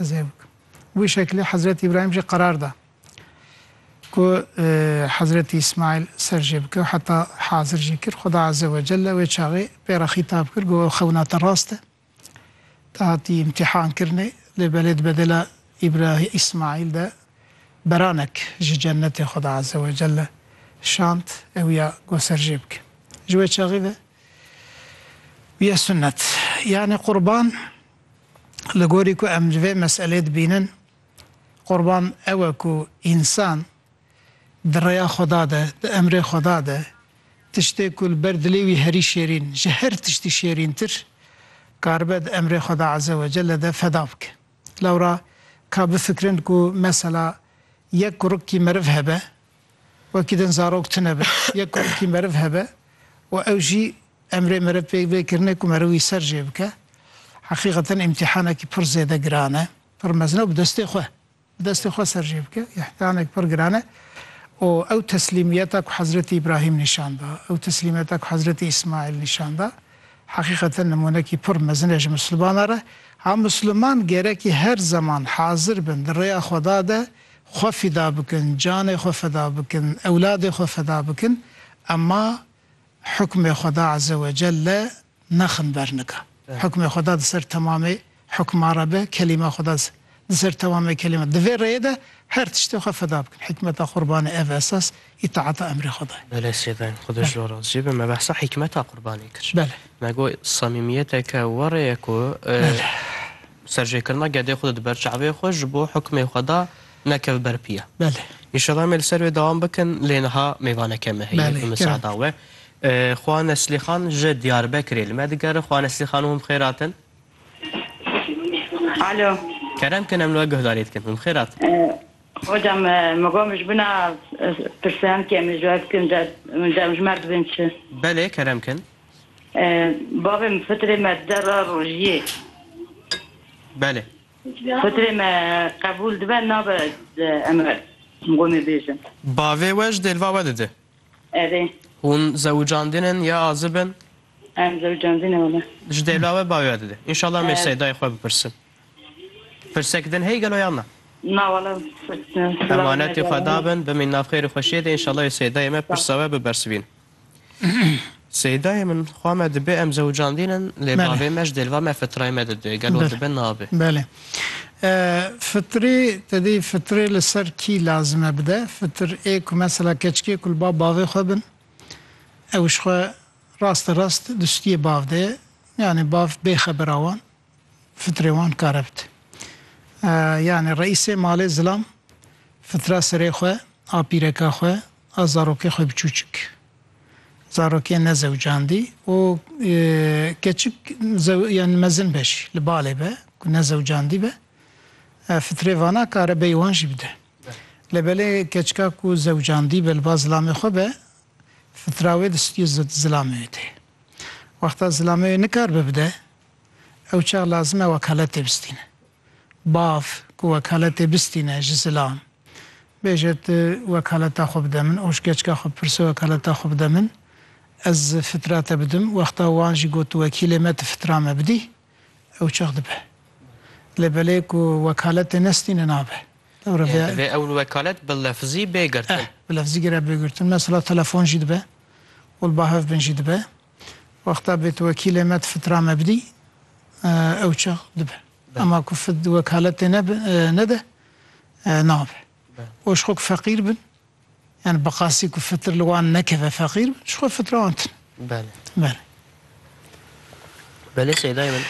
Zevk. Wî şeklê Hezretî Îbrahîm jî qerar da ku Hezretî Îsmaîl ser jê bike û heta hazir jî kir. Xuda Azze ve Celle wê çaxê pê re xîtab kir got, Ew xewna te rast e. Te hatî îmtîhan kirinê. Lê belê di bedela Îbrahî Îsmaîl de beranek ji cennetê Xuda Azze ve Celle şand, ew ya got ser jê bike. Ji wê çaxê ve bûye sunnet. Yanî qurban. Li gorî ku em li vê meselê dibînin, Qurban ew e ku însan di rêya Xweda de, di emrê Xweda de, tiştê ku li ber dilê wî herî şêrîn, ji her tiştî şêrîntir, karibe di emrê Xweda Eze we Celle de feda bike. Lewra ka bifikrin ku mesela yek kurikî meriv hebe Wekî din zarok tune be, yek ku wekî meriv hebe û ew jî emrê meriv pê bê kirine ku meriv wî ser jê bike. Heqîqeten îmtîhanekî pir zêde giran e, pir mezin e û bi destê xwe, bi destê xwe ser jê bike, îhtianek pir giran e û ew teslîmiyeta ku Hezretî Îbrahîm nîşan da, ew teslîmiyeta ku Hezretî Îsmaîl nîşan da, heqîqeten nimûnekî pir mezin e ji misilmanan re. Ha misilman gerekî her zeman hazir bin di rêya Xweda de xwe fîda bikin, canê xwe feda bikin, ewladê xwe feda bikin ema hukmê Xweda Azewecelle nexin ber nika. Hukmê Xweda di ser temamê hukman re be, kelîma Xweda di ser temamê kelîman. Di vê rêyê de her tiştê xwe feda bikin. Hîkmeta qurbanê ev e esas îtaata emrê Xweda ye. Belê sêven, Xweda ji wan razî be, me behsa hîkmeta qurbanê kir. Belê. Me got samîmiyeteke were ye ku Serjêkirina gedê xwe di ber çavê xwe ji bo hukmê xwe da nekeve ber piya. Belê. Înşallah em ê li ser wê dewam bikin lê niha mêvaneke me heye bi misada we. Xwa Neslîxan ji Diyarbekirê li me digere. Xwa Neslîxan hûn bi xêr hatin. Alo. Kerem kin em li we guhdarî dikin. Hûn bi xêr hatin. Hocam min got min ji bin a pirsiyankê em ê ji we bikin de em ji me re dibin çi? Belê kerem kin. Bavê min fitrê me derra rojiyê. Belê. Fitrê me qebûl dibe nabe emre qomê bêjin. Bavê we ji dêlva we dide. Erê. Hûn zewicandîn in ya azib in? Em zewicandîn in wele. Ji dêla we bavê we dide. Înşallah em ê seydayê xwe bipirsin. Pirsek din heye gelo yan na? Na wele pirs. Emanetê xwe dabin bimîn nav xêr û xweşiyê de înşallah ê seydayê me pirsa we bibersivînin. Seydayê min xwa me dibê em zewicandîn in lê bavê me ji dêlva me fitrayê me didê gelo dibe nabe. Belê. Fitrê te dê fitrê li ser kî lazim e bide? Fitr ê ku mesela keçikê ku li ba bavê xwe bin ew ji xwe raste rast di stûyê bav de ye yanî bav bê xebera wan. Fitrê wan karebt. Yanî reîsê malê zilam fitra serê xwe a pîreka xwe a zarokê xwe biçûçik. Zarokê nezewcandî û keçik yanî mezin be jî li balê be ku nezewcandî be. Fitrê vana kare bey wan jî bide. Lebelê keçika ku zewcandî be li ba zilamê xwe be fitra wê distî zilamê wê tê. Wexta zilamê wê nikaribe bide. Ew çax lazim e wekaletê bistîne. Bav ku wekaletê bistîne ji zilam, bêje tu wekaleta xwe bide min, oşkeçka xwe bipirse wekaleta xwe bide min, ez fitra te bidim, wexta wan jî got wekîlê me tu fitra me bidî, ew çax dibe. Lê belê ku wekaletê nestîne nabe. Yê divê ew wekalet bi lefzî bê girtin. Eh, bi lefzî gire bê girtin. Mesela telefon jî dibe û li ba hev bin jî dibe. Wexta bêt wekîlê me di fitra me bidî ew çax dibe. Ema ku fid wekaletê nede nabe. Û ji xwe ku feqîr bin yani bi qasî ku fitir li wan nekeve feqîr bin ji xwe fitra wan tune. Belê. Belê. Belê Seydayê min.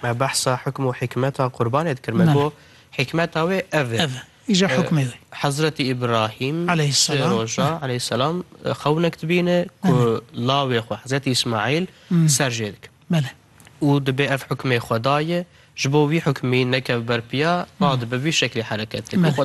Me behsa hikm û hikmeta qurbanê dikir. Me got hikmeta wê ev e. Îja hukmê wê. Hezretî Îbrahîm, sê roja, aleyhîsselam, xewinek dibîne ku lawê xwe, Hezretî Îsmaîl, ser jê dike. Belê. Û dibê ev hukmê Xwedayê ji bo wî hukmî nekeve ber piya, radibe vî şeklê hereket dike.